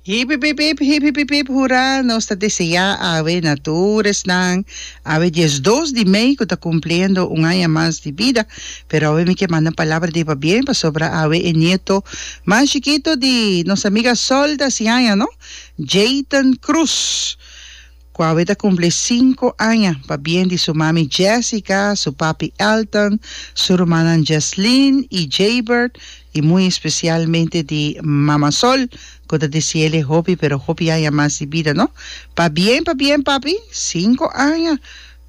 Hipipipip, hipipipip hurá, nos ta deseá awe na tur esnan awe dies dos di mei ku ta kumpliendo un aña mas di bida, pero awe mi ke manda palabra di pabien pasobra awe e nieto mas chikito di nos amiga Sol ta hasi aña no, Jayton Cruz. ku awe ta kumpli sinku aña, pa bien di su mami Jessica, su papi Elton, su rumannan Jesslyn i Jaybert, i muy especialmente di Mama Sol, ku ta deseele hopi pero hopi aña mas di bida no. Pa bien pa bien papi, sinku aña!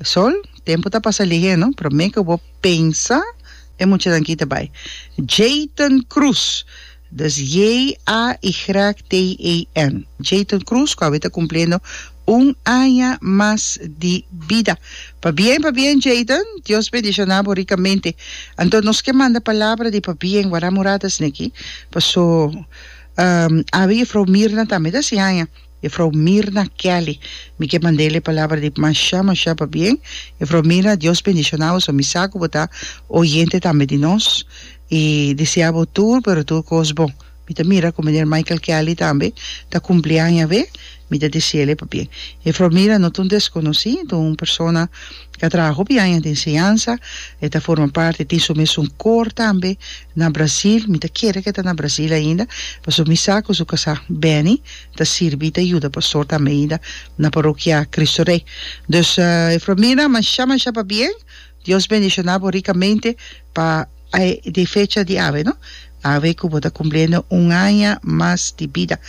Sol, tempu ta pasa lihé no, promé ku bo pensa e muchanan aki ta bai. Jayton Cruz. Dis JA y Graag TAN. Jayton Cruz cu awor ta cumpliendo un aña mas di bida. Pabien pabien Jayton, Dios bendiciona bo ricamente. Anto nos ke manda palabra di pabien wara Muradas neki, paso awe Juffrouw Mirna tambe ta sin aña, Juffrouw Mirna Kelly. Mi ke manda el'e palabra di masha masha pabien. Juffrouw Mirna, Dios bendiciona bo, so mi sa cu bo ta oyente tambe di nos. I deseá bo tur, pero tur kos bon. Mi ta mira ku Miner Michael Kelly tambe ta kumpli aña awé, mi ta dese'le pabien. E fromira no ta un deskonosí, ta un persona ku a traha hopi aña den enseñansa, e ta forma parti, e tin su mes un kor tambe na Brasil, mi ta kere ku e ta na Brasil ainda, pasobra mi sa ku su kasá Benny ta sirbi i ta yuda pastor tambe ainda na parokia Kristu Rei. Dus e fromira mashá mashá pabien. Dios bendiciona bo ricamente pa de fecha di awe no awe cu bo ta cumpliendo un aña mas di bida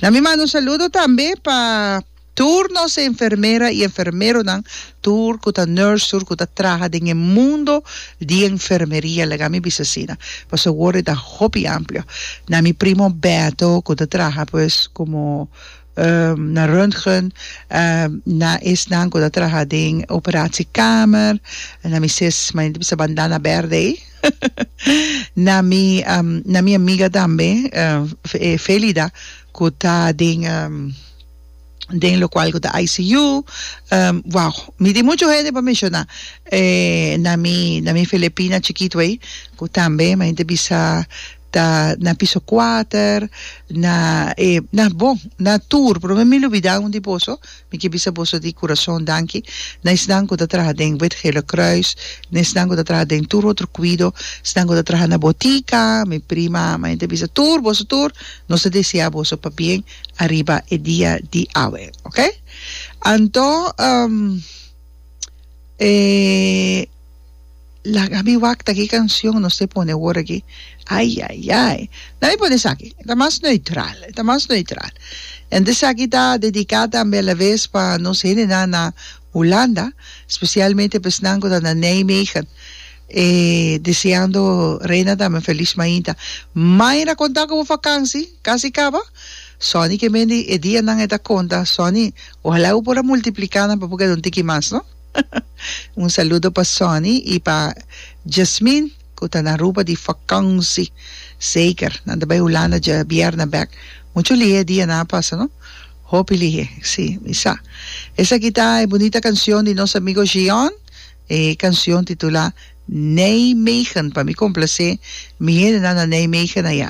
na mi manda un saludo tambe pa tur nos enfermera y enfermeronan tur cu ta nurse tur cu ta traha den e mundo di enfermeria laga mi bisa asina pasobra e worde ta hopi amplio na mi primo Berto cu ta traha pues como na röntgen, na esnan ku ta traha den operaciekamer, na mi ses mane ta bisa bandana berde ei, na mi na mi amiga tambe Felida ku ta den den lokual ku ta ICU, wow mi tin muchu hende pa menshoná, na mi na mi Filipina chikitu ei ku tambe mane ta bisa. ta na piso kuater na e na bon na tur pero mi mi lubida un di boso mi ke bisa boso di kurason danki na esnan ku ta traha den wit gele kruis na esnan ku ta traha den tur otro kuido esnan ku ta traha na botika mi prima mi ta bisa tur boso tur nos ta deseá boso pa bien ariba e dia di awe oke anto e Laga mi wak ta ki kansyon nos te pone awor aki, ayayay, na mi pone esaki, e ta mas neutral, e ta mas neutral. En esaki ta dediká tambe alabes pa nos hendenan na Hulanda, spesialmente pa esnan ku ta na Nijmegen, e deseando Reina tambe un feliz mainta. Mayra konta ku bo fakansi kasi kaba, Sonny ke mende e dianan e ta konta, Sonny, ojalá bo por a multipliká nan pa bo keda un tiki mas, no. Un saludo pa Sonny y pa Jasmine cu ta na Aruba di vakansi. Zeker, nan ta bay Hulanda dje bierna bek. Mucho lihe e dia nan a pasa no. Hopi lihe, si, mi sa. Esaki ta e bunita cancion di nos amigo Jean. E cancion titula Nijmegen. Pa mi complace mi hendenan na Nijmegen aya.